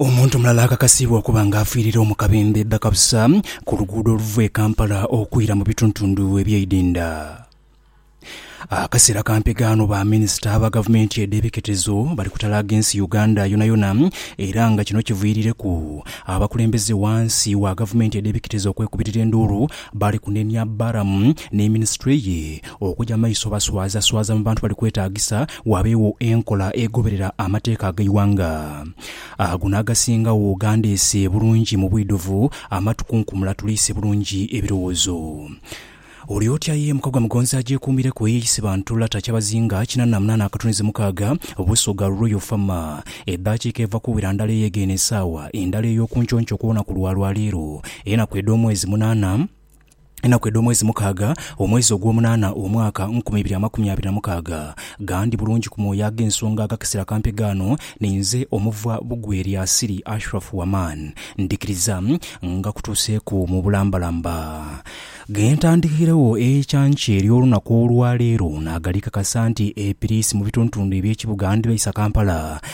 Omuntu mulala akakasiibwa okuba nga afiirira omu kabembe bakabusa ku luguudo oluva e Kampala okwira mu bituntundu eby'eidinda. Akaseera ka mpegaano ba minisita ba gavumenti edh'ebiketezo bali kutalaaga ensi Uganda yonayona era nga kino kiviirireku abakulembeze wansi wa gavumenti edh'ebiketezo okwekubirira enduulu bali kunenia Balaam ne minisitule ye okuja maiso baswazaswaza mu bantu bali kwetaagisa waabeegho enkola egoberera amateeka ag'eighanga. Ago n'agasingagho gandeese bulungi mu bwidhuvu, amatukunkumula tuleese bulungi ebirowoozo. Oli otya ye Mukagwa Mugonzi agyekuumireku eyeeyise bantu lata Kyabazinga kinana na munaana akatunzi mukaaga Busoga Royal Fama edhaakiika eva kuwera ndala eye g'eno esaawa endala ey'okunconco kw'olunaku lwa lwaleero enaku edh'omwezi munaana Enaku edh'omwezi mukaaga, omwezi ogw'omunaana, omwaka nkumi ibiri amakumi abiri na mukaaga, ghandi bulungi ku mwoyo ag'ensonga ag'akasera kampe ghano, ninze omuva bugwi eri Asiri, Ashrafu Waman. Ndhikiriza nga kutuuseeku mu bulambalamba. Ghe ntandikairegho eikyanki ery'olunaku olwa leero, naaghalii kakasa nti Epiriisi mu bitundutundu eby'ekibuga ndibaisa Kampala.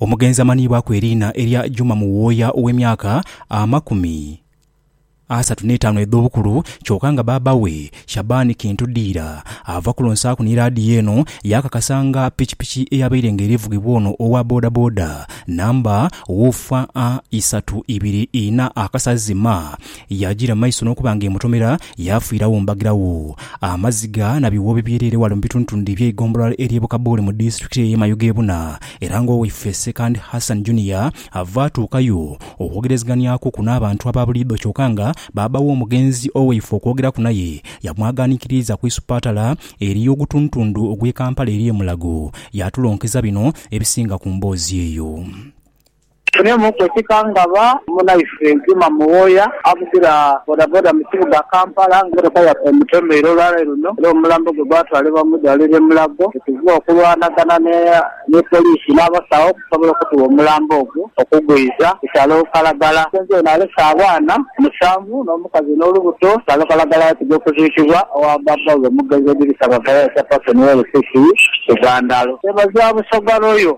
Omugenzi amanhiibwaku eriina erya Juma Muwooya ow'emyaka amakumi asatu n'etaanu edh'obukulu kyoka nga bbaabba we, Shaban Kintu Diira ava kulonsaaku ni laadiyo eno yaakakasa nga pikipiki eyabaire nga eri vugibwa ono owa bodaboda namba UFA isatu ibiri inha akasazi ma Yaagira mu maiso n'okuba nga emutomera, yaafiiragho mbagiragho. Amaziga na biwuuwo bibyereire ghale mu bitundutundu eby'eigombolola ery'e Bukabuule mu disiturikiti ey'e Mayuge ebuna, era ng'owaife Ssekandi Hassan Junior ava atuukayo okwogerezeghanyakuku n'abantu aba buliidho kyoka nga baaba w'omugenzi owaife okwogeraku naye yamwaghanikiriiza ku isupatala ery'ogutundutundu ogw'e Kampala ery'e Mulago. Yaatulonkeza bino ebisinga ku mboozi eyo. Tufunemuuku ekikangaba, munaife Juma Muwooya avugira bodaboda mu kibuga Kampala nga emotoka yaafe emutomeire olwaleero luno era omulambo gwe gwatwalibwa mu idwaliro e Mulago bwetuva okulwanagana ni poliisi n'abasawo okusobola okutugha omulambo ogwo okugwiiza ku kyalo Kalagala. Omusenze ono alese abaana musanvu n'omukazi n'olubuto ku kyalo Kalagala yatidha okuziikibwa owa bbaabba we Mugenzi Edirisa Bavayo Chairperson wa LCC Bugandalo. Twebaza Busoga Royal.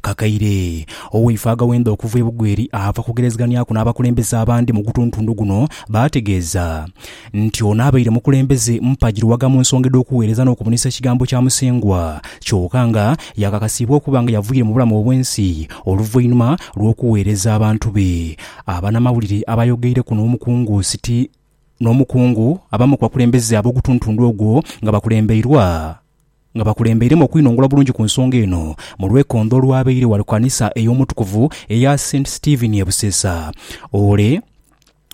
Kakaire, owaife aghawenza okuva e Bugweri ava kugerezeganiaku n'abakulembeze abandi mu gutuntundu guno baategeeza nti ono abaire mukulembeze mpagi lughaga mu nsonga edh'okuweereza n'okubunisa ekigambo kya Musengwa kyoka nga yaakakasiibwa okuba nga yavwiire mu bulamu obw'ensi oluvainhuma lw'okuweereza abantu be. Abanamawulire abaayogeireku n'omukungu Siti n'omukungu abamu ku bakulembeze ab'ogutuntundu ogwo nga bakulembeirwa. nga bakulembeiremu okwinongola obulungi ku nsonga eno mu lwekondho olwabaire ghali ku kanisa ey'omutukuvu eya Saint Stephen e Busesa ole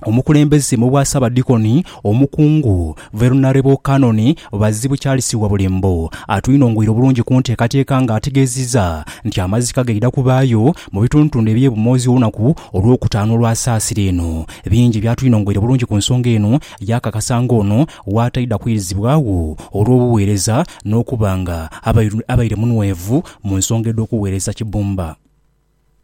omukulembeze mu bwa Ssaabadikoni omukungu Veronarebo Canon Bazibu Charles Wabulembo atwinongoire obulungi ku nteekateeka nga ategeziza nti amazika gaidha kubaayo mu bitundutundu ebye Bumozi olunaku olwokutaanu olwa saasira eno bingi byatwinongoire bulungi ku nsonga eno Yaakakasa ng'ono w'ataidha kwirizibwagho olw'obugheereza n'okuba nga abaire munhwevu mu nsonga edh'okugheereza Kibumba.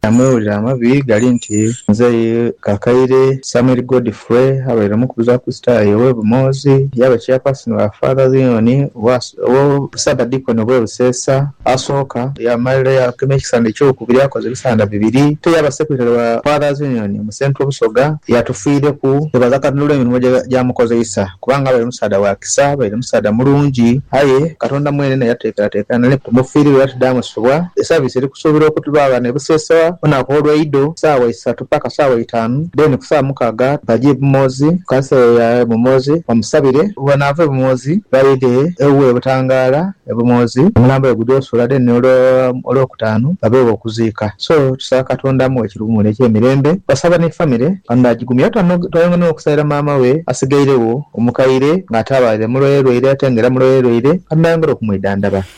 Namwewulira amabi gali nti nze ye Kakaire Samuel Godfrey abaire omukuluze wa Kristayo ow'e Bumoozi, yaaba Chairperson wa Father Zion owa. Obwo Ssaabadiikono bwe Buseesa asooka. Yaamalira yaagema ekisanda ekyokubiri yaakoza ebisanda bibiri. Ate yaaba Secretary wa Fathers Union mu Central Busoga yatufiireku. Twebaza Katonda olw'emirimo gye gy'amukozeisa kubanga abaire musaadha wa kisa, abaire musaadha mulungi. Aye Katonda mwene naye yatuteekerateekera nale nti tumufiirire era tudaamusubwa. Esaviisi eri kusuubirwa okubaagho ghano e Buseesa olunaku olw'eidho ku saawa isatu. paka saawa eitaanu, then ku saawa mukaaga baje e Bumoozi ku kanisa eya e Bumoozi bamusabire. Bwebanaava e Bumoozi baidhe ewuwe e Butangaala e Bumoozi omulambo we gudhe osula then olwo Olwokutaanu babeegho okuziika. So tusaba Katonda amuwe ekiruumule eky'emirembe. Basaba ni famire Katonda agigumye era twayongera n'okusaira maama we asigairegho omukaire nga ataabaire mulwairelwaire ate nga era mulwairelwaire Katonda ayongere okumwidhandhaba.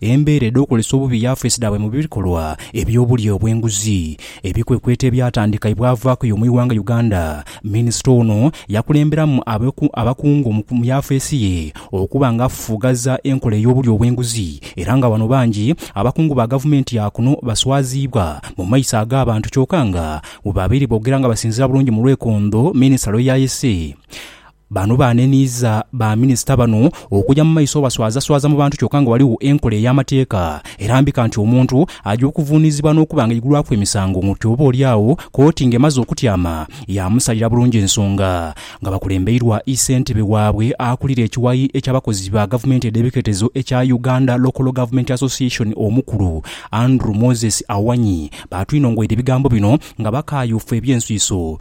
Embeera edh'okukozesa obubi yafeesi dhaabwe mu bikolwa eby'obulya obw'enguzi ebikwekweto ebyatandika ye bwavaaku y'omu ighanga Uganda. Minisita ono yakulemberamu abakungu mu yafeesi ye okuba nga afufugaza enkola ey'obulya obw'enguzi era nga wano bangi abakungu ba gavumenti ya kuno baswaziibwa mu maiso ag'abantu kyoka nga webabaire boogera nga basinziira bulungi mu lwekondho minisita lweyayese Bano baaneniiza ba minisita bano okuja mu maiso obaswazaswaza mu bantu kyoka nga ghaligho enkola ey'amateeka erambika nti omuntu aja okuvuunizibwa n'okuba nga aigulwaku emisango ng'oti oba oli agho kooti ng'emaze okutyama yaamusalira bulungi ensonga nga bakulembeirwa ssentebe waabwe akulira ekiwayi eky'abakozi ba gavumenti edh'ebiketezo ekya Uganda Local Government Association Omukulu Andrew Moses Awanyi baatwinongoire ebigambo bino nga bakaayuufu eby'enswiso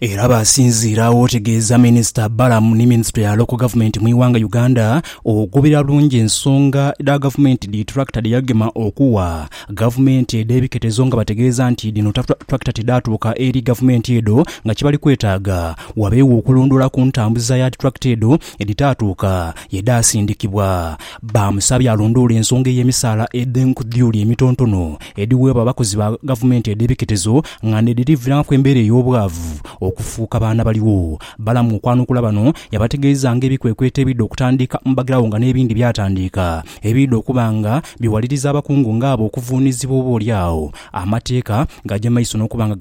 Era baasinziira agho otegeeza Minisita Balaam ni Minisitule ya Local Government mu ighanga Uganda ogoberera bulungi ensonga dha Gavumenti dhi Tractor dhe yagema okuwa Gavumenti edh'ebiketezo nga bategeeza nti dhino Tractor tidhaatuuka eri Gavumenti edho nga kibali kwetaaga wabeewo okulondoola ku ntambuza ya Tractor edho edhitaatuuka ye dhaasindikibwa. Baamusabye alondoole ensonga ey'emisaala edh'enkudhuli emitontono edhiweebwa abakozi ba gavumenti edh'ebiketezo nga n'edhirivirangaku embeera ey'obwavu okufuuka baana baligho. Balamu okwanukula bano yabategeeza nga ebikwekweto ebidha okutandika mu bagirawo nga n'ebindi byatandiika ebiidha okuba nga biwaliriza abakungu nga abo okuvuunizibwa oba olyagho amateeka gaja maiso n'okuba nga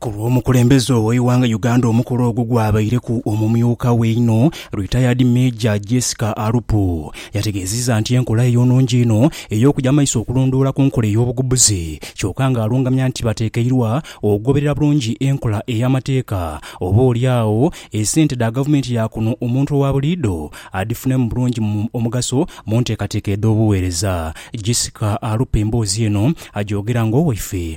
Ku lw'omukulembeze ow'eighanga Uganda omukolo ogwo gwabaireku omumyuka we einho Retired Major Jessica Alupo yategeezizza nti enkola eyo nnungi inho ey'okuja maiso okulondoola ku nkola ey'obugubuzi kyoka ng'alungamya nti batekeirwa okugoberera bulungi enkola ey'amateeka oba oli agho esente dha gavumenti ya kuno omuntu owa buliidho adhifunemu bulungi omugaso mu nteekateeka edh'obuweereza. Jessica Alupo emboozi eno agyogera ng'owaife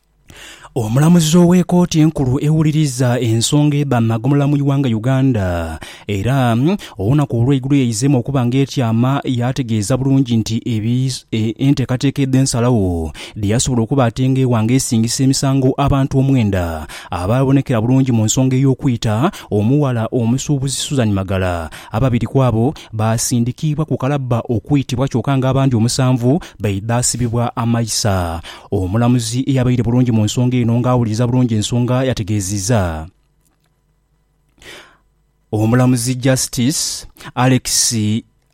Omulamuzi ow'ekooti enkulu ewuliriza ensonga edha magomolola mu iwanga Uganda era olunaku olweigulo yaizeemu okuba nga etyama yaategeeza bulungi nti enteekateeka edh'ensalagho dheyasobola okuba ate nga ewa nga esingisa emisango abantu omwenda abaabonekera bulungi mu nsonga ey'okwita omuwala omusuubuzi Suzan Magala ababiri kwabo baasindikiibwa ku kalabba okwitibwa kyoka nga abandi omusanvu baidhasibibwa amaisa. Omulamuzi eyabaire bulungi mu nsonga eno nga awuliriza bulungi ensonga yategeeziza Omulamuzi Justice Alex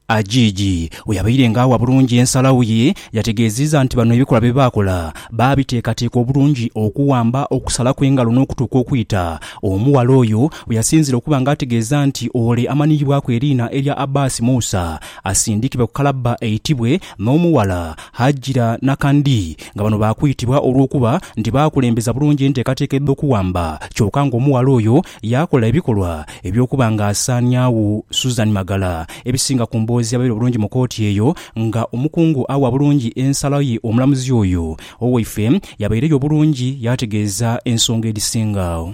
Ajiiji bwe yabaire nga awa bulungi ensalagho ye yategeeziza nti bano ebikolwa bye baakola baabiteekateeka obulungi okuwamba okusalaku engalo n'okutuuka okwita omuwala oyo we yasinziira okuba nga ategeeza nti ole amanhiyibwaku eriina erya Abbas Musa asindikibwe ku kalabba eitibwe N'omughala Hajira Nakandi nga bano baakwitibwa olw'okuba nti baakulembeza bulungi enteekateeka edh'okuwamba kyoka ng'omughala oyo yaakola ebikolwa eby'okuba ng'asaaniagho Susan Magala. Ebisinga ku mboozi yabaire bulungi mu kooti eyo nga omukungu awa bulungi ensala ye omulamuzi oyo. Owaife yabaireyo bulungi yaategeeza ensonga edhisinga agho.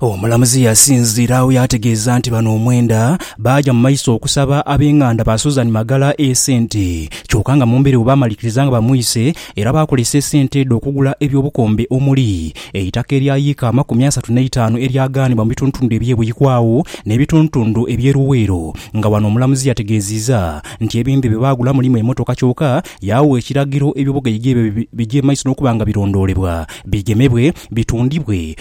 Omulamuzi yasinziira agho yaategeeza nti bano omwenda baaja mu maiso okusaba ab'enganda ba Susan Magala esente kyoka nga mu mbeera eyo baamalikiriza nga bamwise era baakozesa esente edho okugula eby'obukombe omuli eitaka erya yiika amakumi asatu n'eitaanu eryagaanibwa mu bitundutundu eby'e Buikwawo n'ebitundutundu eby'e Luweero nga wano omulamuzi yategeeziiza nti ebintu bye baagula mulimu emmotoka kyoka yaagha ekiragiro eby'obugaiga ebyo bigye mu maiso n'okuba nga birondoolebwa bigemebwe bitundibwe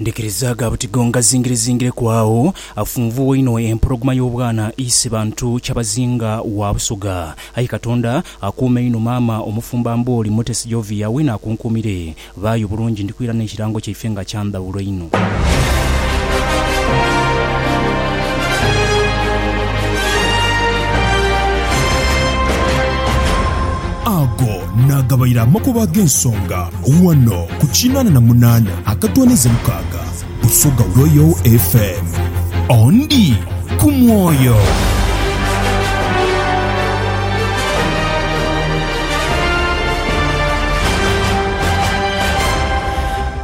Ndikirizaaga buti gonga zingirizingireku agho afunvuwa inho empologoma y'obwana ise bantu kyabazinga wa Busoga. Aye Katonda akuume inho maama omufumba Mbooli Mutesi Jovia weena akunkuumire. Baayo bulungi ndikwira n'ekirango kyaife nga kya ndhawulo inho. Naagabaire amakubo ag'ensonga ghano ku kinaana na munaana akatwaniza mukaaga Busoga Royal FM. Ondi ku mwoyo.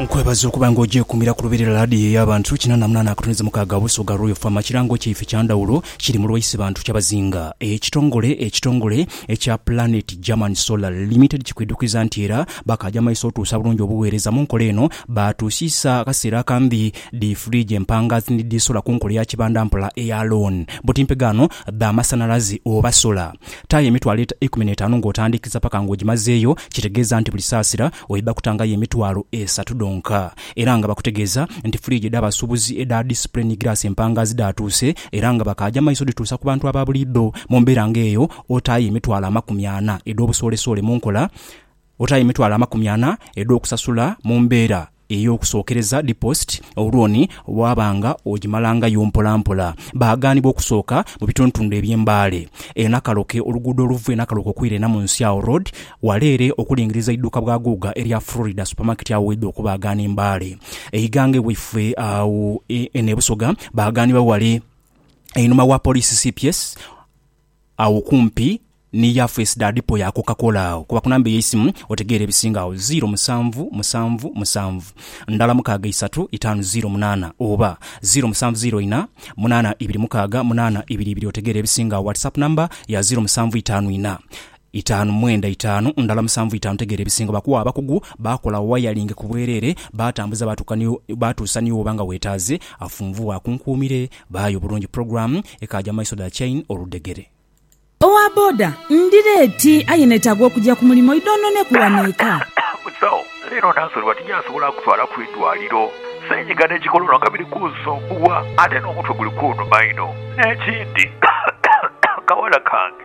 Nkwebaza okuba nga ogyekumira ku lubiri lwa laadiyo ey'abantu kinana na munaana akatuneza mukaaga Busoga Royal FM. Ekirango kyaife kya ndhawulo kiri mu lwaise bantu kyabazinga. Ekitongole ekitongole Ekya Planet German Solar Limited kikwidhukiza nti era bakaaja maiso otuusa bulungi obugheereza mu nkola eno. Baatuusiisa akaseera akambi dhi fridge empangaazi ni dhi sola ku nkola eya kibanda mpola eya loan buti mpegaano dha masanhalaze oba sola. Taayo emitwalo ikumi n'etaanu ng'otandiikiriza paka ng'ogimazeeyo, kitegeeza nti buli saasira oidha kutangayo emitwalo esatu dhonka. Era nga bakutegeeza nti fridge edh'abasuubuzi edha display ni giraasi empangaazi dhaatuuse Era nga bakaaja maiso dhituusa ku bantu aba buliidho. Mu mbeera nga eyo, otaayo emitwalo amakumi ana edh'obusoolesoole mu nkola, otaayo emitwalo amakumi ana edh'okusasula mu mbeera ey'okusookereza, deposit, olwoni bw'aba nga ogimalangayo mpolampola. Baaghanibwa okusooka mu bitundutundu eby'embaale e Nakaloke, oluguudo oluva e Nakaloke okwira e Namunsi Awo Road, Wala ere okulingiriza eiduuka bwa Guuga erya Florida Supermarket agho waidha okubaagaana e Mbale. Eighanga ewaifwe agho eno e Busoga baagaanibwa wale einhuma wa Poliisi cps agho okumpi ni Yafes da Dipo ya Coca Cola agho. Kuba ku namba ey'eisimu otegeere ebisinga agho, ziiro musanvu musanvu musanvu ndala mukaaga isatu itaanu ziiro munaana oba ziiro musanvu ziiro ina munaana ibiri mukaaga munaana ibiri ibiri otegeere ebisinga agho. Whatsapp namba ya ziiro musanvu itaanu ina Itaanu mwenda itaanu ndala musanvu itaanu tegeera ebisingo bakuwa abakugu baakola wayalingi ku bwereere baatambuza baatuuka ni baatuusa ni wooba nga weetaaze afunvu waakunkuumire baayo bulungi program ekaaja mu maiso dha chain oludhegere. Owa boda ndi leeti aye neetaaga okugya ku mulimo i don't know ne ku wano eka. Musawo, leero nansolebwa tinjasobola kutwala ku idwaliro. Senyiga ne kikololo nga biri kunsumbuwa ate n'omutwe guli kunuma inho. N'ekindi, akawala kange.